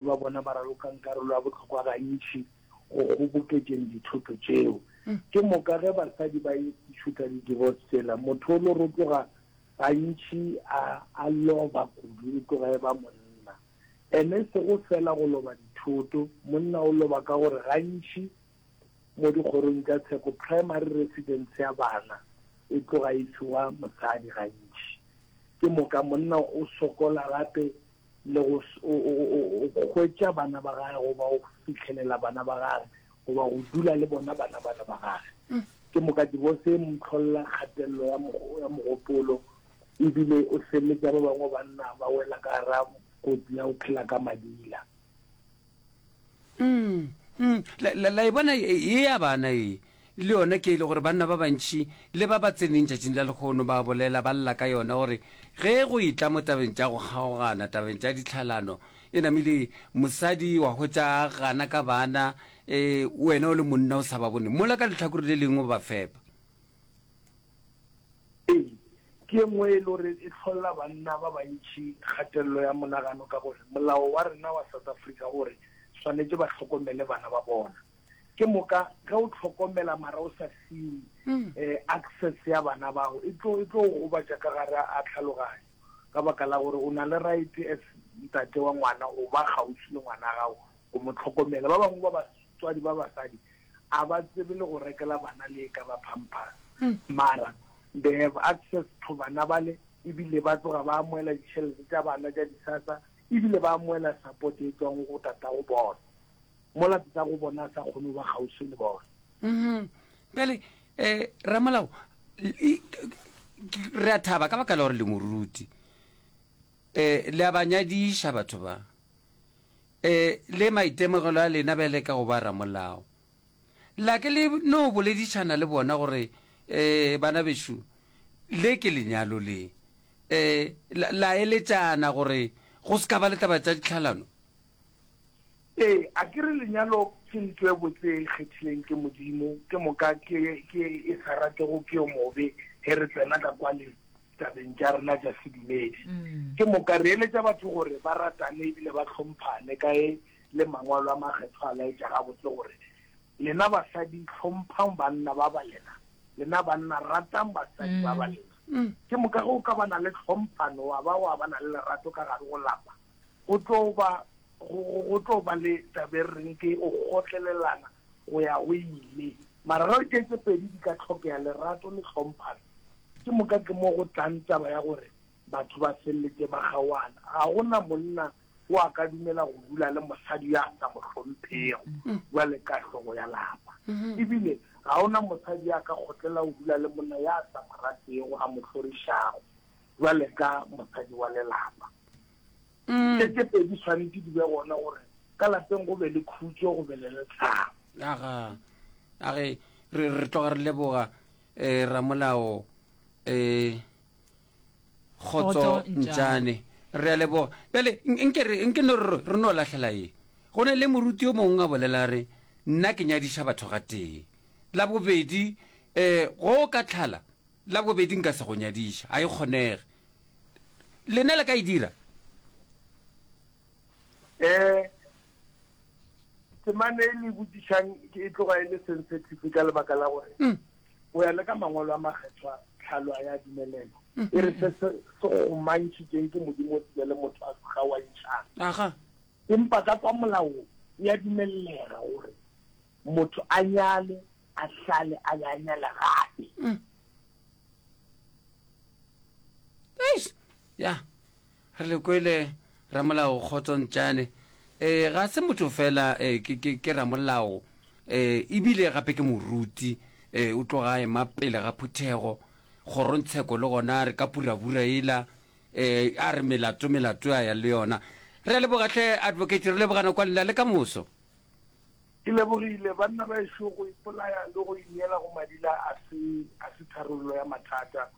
ba bona ba ralokang karolo ya bohlokwa gantši go kgoboketšeng dithoto tšeo. Ke moka ge basadi ba etišwe ka di-divorce tsela, motho o lo rotloga gantši a a loba kudu, e tloga e ba monna. And e sego feela go loba dithoto, monna o loba ka gore gantši mo dikgorong tša tsheko primary residence ya bana e tloga e fiwa mosadi gantši. Ke moka monna o sokola gape. le go hwetša bana ba gage goba go fitlhelela bana ba gage goba go dula le bona bana bana ba gage mm. ke moka divorce e motlholela kgatelelo ya mogopolo ebile o feleletša ba bangwe banna ba wela ka ra kotsi ya go phela ka madila la e bona e ya bana e le yona ke e le gore banna ba bantšhi le ba ba tseneng tšatšing la lekgono ba bolela ba lla ka yona gore ge go e tla mo tabeng tša go kgaogana tabeng tša ditlhalano e namile mosadi wa hwetša gana ka bana um wena o le monna o sa ba bone mola ka letlhakore le lengwe ba fepa Ee, ke e nngwe e le gore e hlolla banna ba bantši kgatelelo ya monagano ka gore molao wa rena wa South Africa o re swanetše ba hlokomele bana ba bona. Ke moka ge o hlokomela mara o sa fiwe um access ya bana bao e tlo e tlo o gobatša ka gare a tlhaloganyo ka baka la gore o na le right as ntate wa ngwana o ba kgauswi le ngwana gago go mo tlhokomela. Ba bangwe ba batswadi ba basadi a ba tsebe le go rekela bana le eka ba pampers mara they have access to bana bale ebile ba tloga ba amoela ditšhelete tša bana tša disasa ebile ba amoela support e tswang go tata go bona mola tata go bona a sa kgone ba kgauswi le bona mm-hmm. bjale um eh, ramolao re a thaba ka baka la gore le moruti um le a ba nyadiša batho ba E le maitemogelo a lena bjale ka go ba ramolao, la ke le no boledišana le bona gore, E, bana bešo, le ke lenyalo le. E, la, la eletšana gore go se ka ba le taba tša ditlhalano? E, a ke re lenyalo ke nto e botse e kgethileng ke Modimo, ke moka ke, ke e sa ratego ke yo mobe, ge re tsena ka kwale, tabeng tša rena tša sedumedi. Mm. Ke moka re eletša batho gore ba ratane ebile ba hlomphane ka e le mangwalo a makgetho a laetša gabotse gore lena basadi hlomphang banna ba ba lena lena banna ratang basadi ba ba mm. lena mm. ke moka go ka bana le tlhomphano wa ba wa bana le lerato ka gare go lapa go tlo ba go tlo ba le tabe reng ke o gotlelelana go ya go ile. Mararo ke tše pedi di ka hlokega, lerato le hlomphano. Ke moka ke mo go tlang taba ya gore batho ba feleletše ba kgaoana. Ga go na monna o a ka dumela go dula le mosadi yo a sa mo hlomphego bjale ka hlogo ya lapa. E bile ga go na mosadi yo a ka kgotlela go dula le monna yo a sa mo ratego, a mo hlorišago bjale ka mosadi wa lelapa. Tše tše pedi di tshwanetse di be gona gore ka lapeng go be le khutšo go be le letlhabo. Aga a re re re tloga re leboga eh, ramolao eh, kgotso ntšane re a leboga bjale nke re nke no re re no lahlela ye go ne le moruti yo mongwe a bolela re nna ke nyadiša batho ga tee la bobedi eh go ka tlhala La bobedi nka se go nyadiše, a e kgonege. Lena le ka e dira? Eh, temane e le botšišang e tloga e le sensitive ka lebaka la gore mm. o ya le ka mangwalo a makgethwa tlhalo a ya dumelela mm. e re se se gomantšhitšeng ke modimo tsile le motho a se gawantšhang empa ka kwa molaong ya dumelela gore motho a nyale a sale a be a nyala gape mm. eish ya re le kwele ramolao kgotsontšane um ga se motho fela um ke, ke, ke ramolao um ebile gape ke moruti um o tloga ema pele ga phuthego kgorontsheko le gona re ka purabura ela um a re melato melato a ya le yona re lebogatlhe advocate re lebogana kwa lela le ka moso Ke lebogile. Banna ba ešo go ipolaya le go ineela go madila a se a se tharollo ya mathata.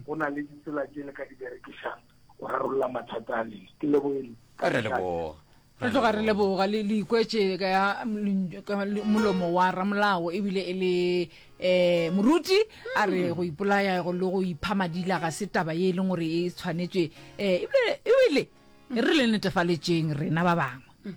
Go na le ditsela tše le ka di berekišang go rarolla mathata a lena. Ke lebohile. Re a leboga. Re tloga re leboga le le ikwetše ka ya ml- ka le- molomo wa ramolao ebile e le um moruti a re go ipolaya go le go ipha madila ga se taba ye e leng gore e tshwanetše um ebile ebile e re le netefaletšeng rena ba bangwe